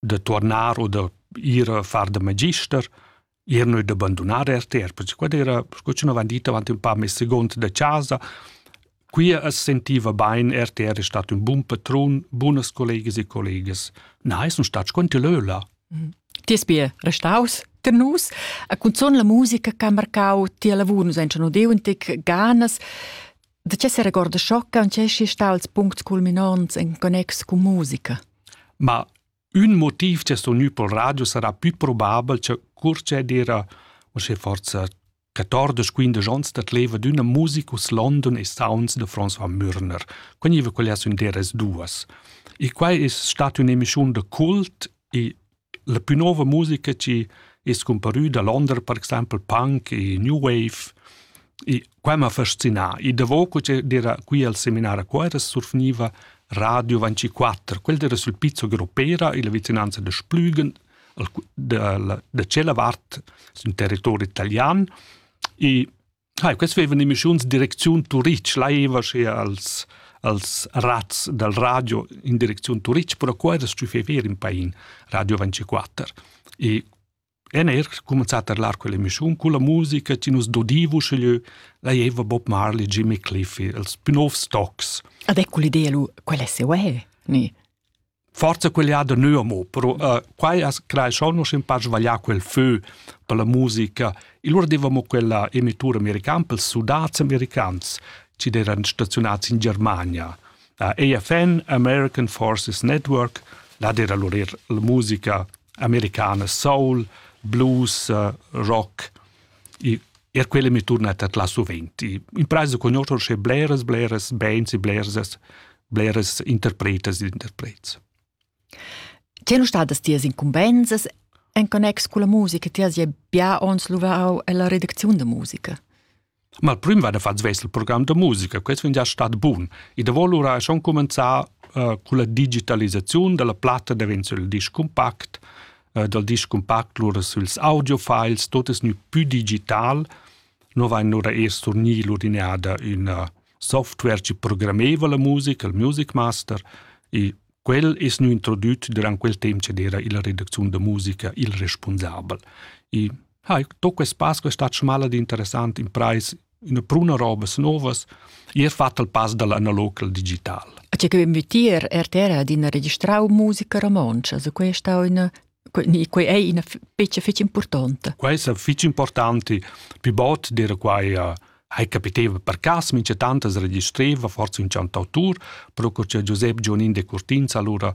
da tornar o da ir a far da magister, ir noi da bandunar RTR, perché quella era, sco ci n'avevan dit avanti un pa, mes segond da casa, Qui as sentiva bain, RTR è stato un buon patrun, buonas collegas e collegas. Na, es un stat quanti leula. Mhm. Ti es bia restaus ter nus, a cunzon la musica che ha marcau ti lavur, nus ein schon udeu un tec ganas, Da che seregorda schoccant che schi stals puncts culminants en connex cu musica? Ma un motiv che sto nu pol radio sarà più probabel che curce d'era o se forza 14-15 ons dat leva d'una musicus London e sounds de François Mürner. Quegniva quella sun deras duas. E quai es stat un'emischiun de cult e La plü nouva musica chi es scumparü da Londra per exaimpel punk e new wave e quai m'ha fascinà. I davo co che d'eira qui al seminar a Cuera surfgniva Radio 24. Quel d'eira sül pizzo Gropera illa vicinanza da Splügen, da la da tschella vart sün territori italian e Hai, quest vevan emissiuns direcziun Turitg, laiva schea als, als razz dal radio in direcziun Turitg, però qua era stü fever in pain, Radio 24. E en er comenzat a lar quell'emissiun con la musica che nus dodivu sceglieu laieva Bob Marley, Jimmy Cliffy, els più novs tocs. Avec quell'idea lu, quell'esse uè, ni? forza quell'ada neu amo, però uh, quai as crai schon nus in par svaglià quel fö per la musica. Il lur devamo quella emitura americana per sudats americans ci eran stazionats in Germania. Uh, AFN, American Forces Network, là era lur er la musica americana soul, blues, uh, rock. E er quella mi turnat at la suvent. In praisa conoscer sche bleras, bleras bands e bleras, bleras interpretas ed interprets. C'è non stadas tias incumbensas en connex con la musica? Ti has ja bia ons luvau ella redacziun da musica. Ma il primo vada fatto svesse il programma di musica, questo è già stato buono. E da volura schon cominciare uh, con la digitalizzazione della platta diventa il disco compact, eh, dal disc cumpact lura süls audiofiles, tot es gnü pü digital. No vain lura eir surgni l'ordinada üna software chi programmeva la musica, il Music Master, e quel es gnü introdüt durant quel temp ch'ed era illa redacziun da musica il respunsabel. E ha, to quest pass quest'at schmal ed interessant imprais üna pruna robas novas e ha fatto il pass dall'analog al digital. A che che vitier RTR ha d'ina registrau musica romontscha, so questa è una quei è una fece fece importante. Questa fece importante più bot dire quai hai capiteva per cas mince tantas registreva forse un cantautur pro che Giuseppe Gionin de Curtinz allora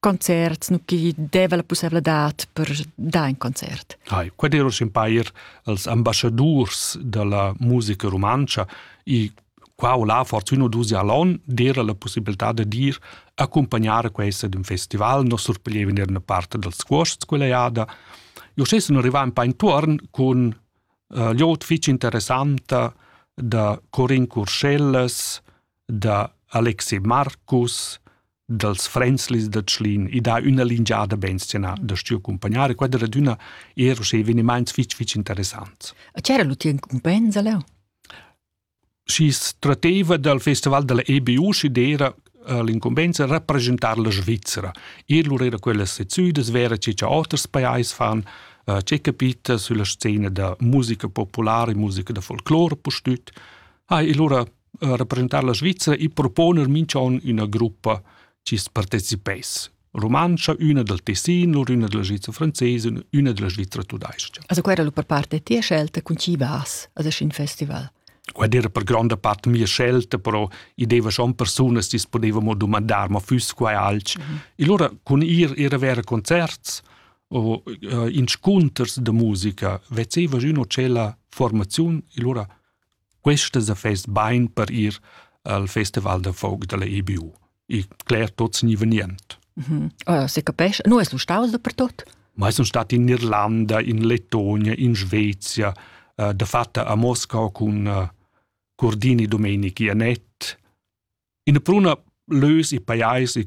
concerts nu chi deva la pussevladad per dar in concert. Hai, quad ero s'impair als ambassadurs da la musica rumantscha i qua o là fortuna dus allon d'era la possibilità da dir accompagnare questa d'un festival no surpiglieva in una parte dels cuosts quella jada. Io stessi non arrivai un pa intorn con uh, liot fitch interessanta da Corin Curschellas, da Alexei Marcus, dals Fränzlis da Tschlin i dà üna lingiada bensena da stiu accumpagnare. Quai era adüna er uschè evenimaints fich fich interessants. E c'era l'util incumbensa leu? Schi tratteva dal festival della EBU schi d'era eh, l'incumbensa rappresentar la Svizzera. Ir lur era quellas sezzüdas vera che cha oters pajais fan, eh, c'è capita sulla scena da musica popolare, musica da folclore pustüt. Ha, e lura representar la Svizra e proponer minch'on üna gruppa chi's partecipess rumantscha, üna dal Tessin, lur üna della Svizra francesa, üna della Svizra tudais-cha. Also quella era per parte tia scelta, con chi vas a un festival? Ed era per gronda parte mia scelta, però i deva schon persunas che potevamo domandar, ma fuss quai alch. Mm -hmm. E allora con ir era vera concerts o uh, inscunters de musica, vezeva üno c'è la formazione, e allora Questas affers bain per ir al festival da folk dalla EBU. E cler tots ni venient. Mm -hmm. oh, se capesce, no es lu staus dapertot? Ma sun stat in Irlanda, in Lettonia, in Svezia, uh, de fatta a Moscau cun uh, Cordini Domenichi e Net. In pruna lös e paiais e